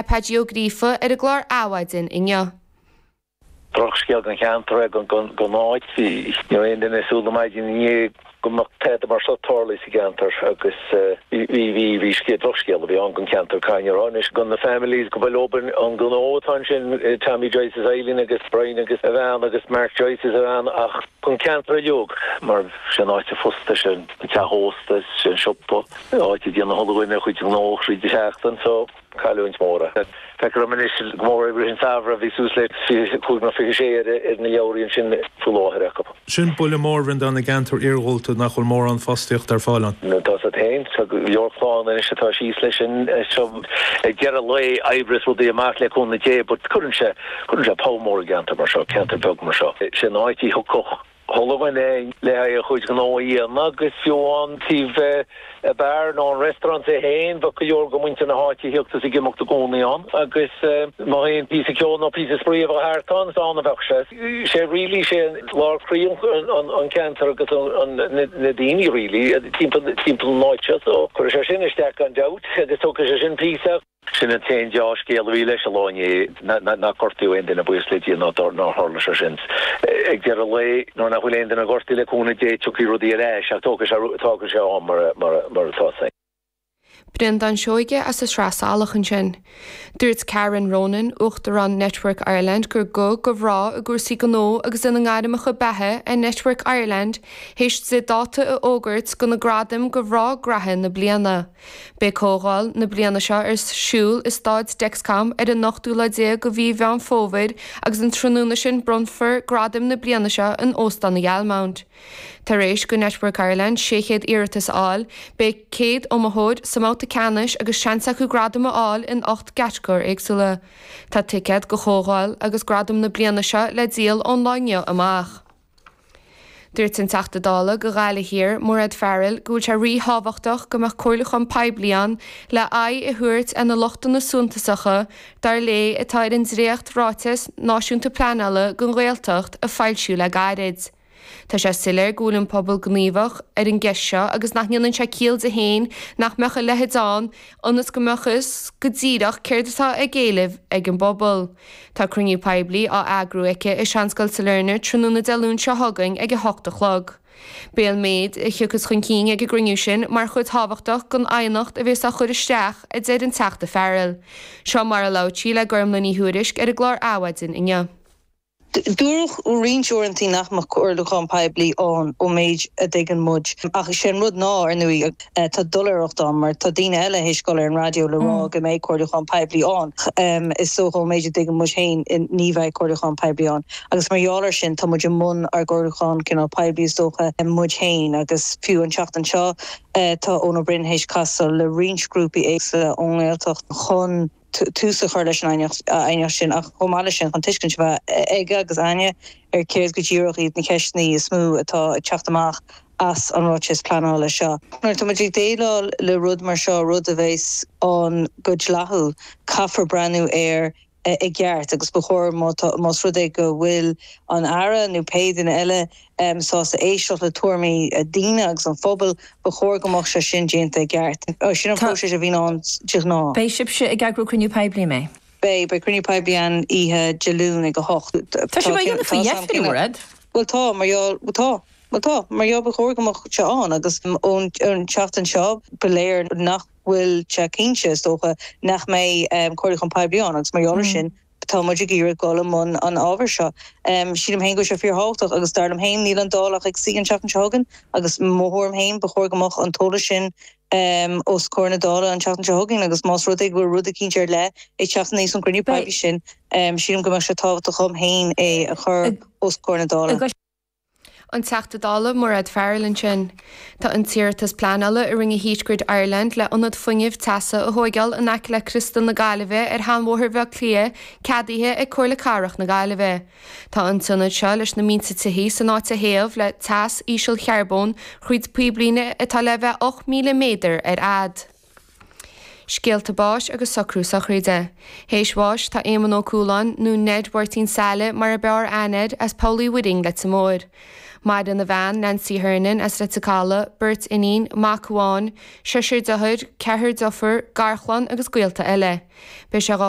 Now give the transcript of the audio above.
Paidí Ó Gríofa ar an gclár Adhmhaidin inniu. Drochscéal don cheantar é don áit, ní raibh aon duine ag súil go maidin inné go mbeadh tada mar seo ag tarlú sa gceantar agus bhí scéal, drochscéal a bhí ann don cheantar cá ní raibh anois do na families go bhfuil i mbun an gnó atá ansin Tommy Joyce is Eileen agus Brian agus a bhean agus Mark Joyce is a bhean ach don cheantar uiliog mar sé an áit an phosta, sé an teach ósta, sé an siopa, áit a ndéanann chuile dhuine a chuid gnó thríd an seachtain so. cailliúint mór é. Feictear dhom anois go mór i rith an samhradh, bhí suas le 25 nó 26 ar na leabhraí ansin faoi láthair acu. Sin buille mór ann do na gceantair iarghúlta nach bhfuil mórán fostaíochta ar fáil ann. Tá siad féin, tá go leor clann anois atá síos leis sin, so ag deireadh lae oibreos rudaí amach le cúnamh Dé but cuireann sé, cuireann sé poll mór i gceantar mar seo, ceantar beag mar seo. Sé an áit a dtiocfadh. chuile dhuine le haghaidh a chuid gnó a dhéanamh agus fiú an taobh an beár nó an restaurant é féin bheadh go leor go muintir na háite ag tíocht is ag imeacht i gcónaí ann agus má tá aon píosa ceoil nó píosa spraoi a bheadh thart ann is ann a bheadh sé. Sé really sé lár croí an ceantar agus na daoine really timpeall an áit seo so cuirfidh sé sin isteach gan dabht agus tógfaidh sé sin píosa Sin an t-aon dea-scéal a bhí leis an lá inné, nach gortaíodh aon duine, buíochas le Dia nár tharla sé sin. Ag deireadh lae, nuair nach bhfuil aon duine gortaithe, le cúnamh Dé, tiocfaidh rudaí ar ais, ach tógfaidh sé am mar atá fhios agat. Breandán Seoige as an tSraith Salach ansin. Dúirt Karen Ronan, Uachtarán Network Ireland gur guth go mhná i gcúrsaí gnó agus ina ngairmeacha beatha é Network Ireland théis di dáta a fhógairt do na gradaim go mhná gnaithe na bliana. Beidh comhdháil na bliana seo ar siúl i Staid Dexcom ar an ochtú lá déag de mhí Mheán Fómhair agus an tráthnóna sin bronnfar gradaim na bliana seo in Óstán an Ghalmont. Tar éis go Network Ireland 600 iarratas a fháil, beidh 100 iomaitheoir sa mbabhta ceannais agus seans acu gradam a fháil in ocht gcatagóir éagsúla. Tá ticéad go comhdháil agus gradam na bliana seo le díol ón lá inniu amach. Dúirt an Teachta Dála go Ghaillimh Thiar, Mairéad Farrell, go bhfuil sé ríthábhachtach go mbeadh comhairliúchán poiblí ann le aghaidh a thabhairt ar na lochtanna suntasacha, dar léi, atá ar an dréacht-Ráiteas Náisiúnta Pleanála don Ghaeltacht a foilsíodh le gairid. Tá sé soiléir go bhfuil an pobal gníomhach ar an gceist seo agus nach ndéanann sé ciall di féin nach mbeadh a leithéid ann ionas go mbeadh fhios go díreach céard atá á éileamh ag an bpobal. Tá cruinniú poiblí á eagrú aici i Seanscoil Sailearna tráthnóna Dé Luain seo chugainn ag 8 a chlog. Beidh an méid a thiocfas chun cinn ag an gcruinniú sin mar chuid thábhachtach den aighneacht a bheas á chur isteach, a deir an Teachta Farrell. Seo mar a labhair sí le Gormfhlaith Ní Thuairisg ar an gclár Adhmhaidin inniu. Dúradh roinnt uaireanta nach mbeadh comhairliúchán poiblí ann ón méid a dtuigeann muid ach is é an rud ná, ar ndóigh, Tá doiléireacht ann mar tá daoine eile théis dul ar an raidió le rá go mbeidh comhairliúchán poiblí ann. Is dócha, ón méid a dtuigeann muid féin, ní bheidh comhairliúchán poiblí ann. Agus mar gheall ar sin tá muid i mbun ár gcomhairliúchán cineál poiblí is dócha, muid féin. Agus fiú an tseachtain seo tá Eoin Ó Broin théis casadh le roinnt grúpaí éagsúla ón nGaeltacht chun. tús a chur leis an aighneacht sin ach chomh maith leis sin chun tuiscint a bheith aige agus aithne ar chéard go díreach iad na ceisteanna is mó atá ag teacht amach as an ráiteas pleanála seo. Nuair atá muid ag déileáil le rud mar seo, rud a bheas ann go dleathúil, caithfear breathnú air i gceart agus ba chóir má tá, más rud é go bhfuil an tAire nó pé duine eile, sásta éisteacht le tuairimí daoine agus an phobail, ba chóir go mbeadh sé sin déanta i gceart. Sin an próiseas a bhíonn ann de ghnáth. Beidh sibhse ag eagrú cruinniú poiblí, an mbeidh? Beidh. Beidh cruinniú poiblí ann oíche Dé Luain ag a hocht. Tá sibh á dhéanamh faoi dheifir, an bhfuil? Bhuel tá, mar gheall ba chóir go mbeadh sé ann agus an tseachtain seo ba léir nach bhfuil sé cinnte, is dócha, nach mbeidh comhairliúchán poiblí ann agus mar gheall ar sin, tá muid ag iarraidh dul i mbun an ábhair seo. Sílim féin go bhfuil sé fíorthábhachtach agus dar liom féin níl an Dáil ach ag suí an tseachtain seo chugainn agus mo thuairim féin ba chóir go mbeadh an t-eolas sin os comhair na Dála an tseachtain seo chugainn agus más rud é go bhfuil rud eicínt ar leith ag teacht aníos ón gcruinniú poiblí sin sílim go mbeadh sé tábhachtach dhom féin é a chur os comhair na Dála. An Teachta Dála Mairéad Farrell ansin. Tá an t-iarratas pleanála a rinne Heat Grid Ireland le ionad fuinnimh teasa a thóigeáil in aice le Criostal na Gaillimhe ar Sheanbhóthar Bhleá Cliath ceadaithe ag Comhairle Cathrach na Gaillimhe. Tá an t-ionad seo leis na mílte tithe san áit a théamh le teas ísealchearbóin thríd píblíne atá le bheith 8,000 méadar ar fhad. Scéalta báis agus socrú sochraide. Théis bháis tá Éamonn Ó Cualáin, nó Ned Mháirtín Saile mar a b'fhearr aithne air, as Poll Uí Mhuirinn, Leitir Móir. Maireann a bhean, Nancy Hernon, as Leitir Calaidh, beirt iníon, mac amháin, seisear deartháir, ceathrar deirfiúr, garchlann agus gaolta eile. Beidh sé dhá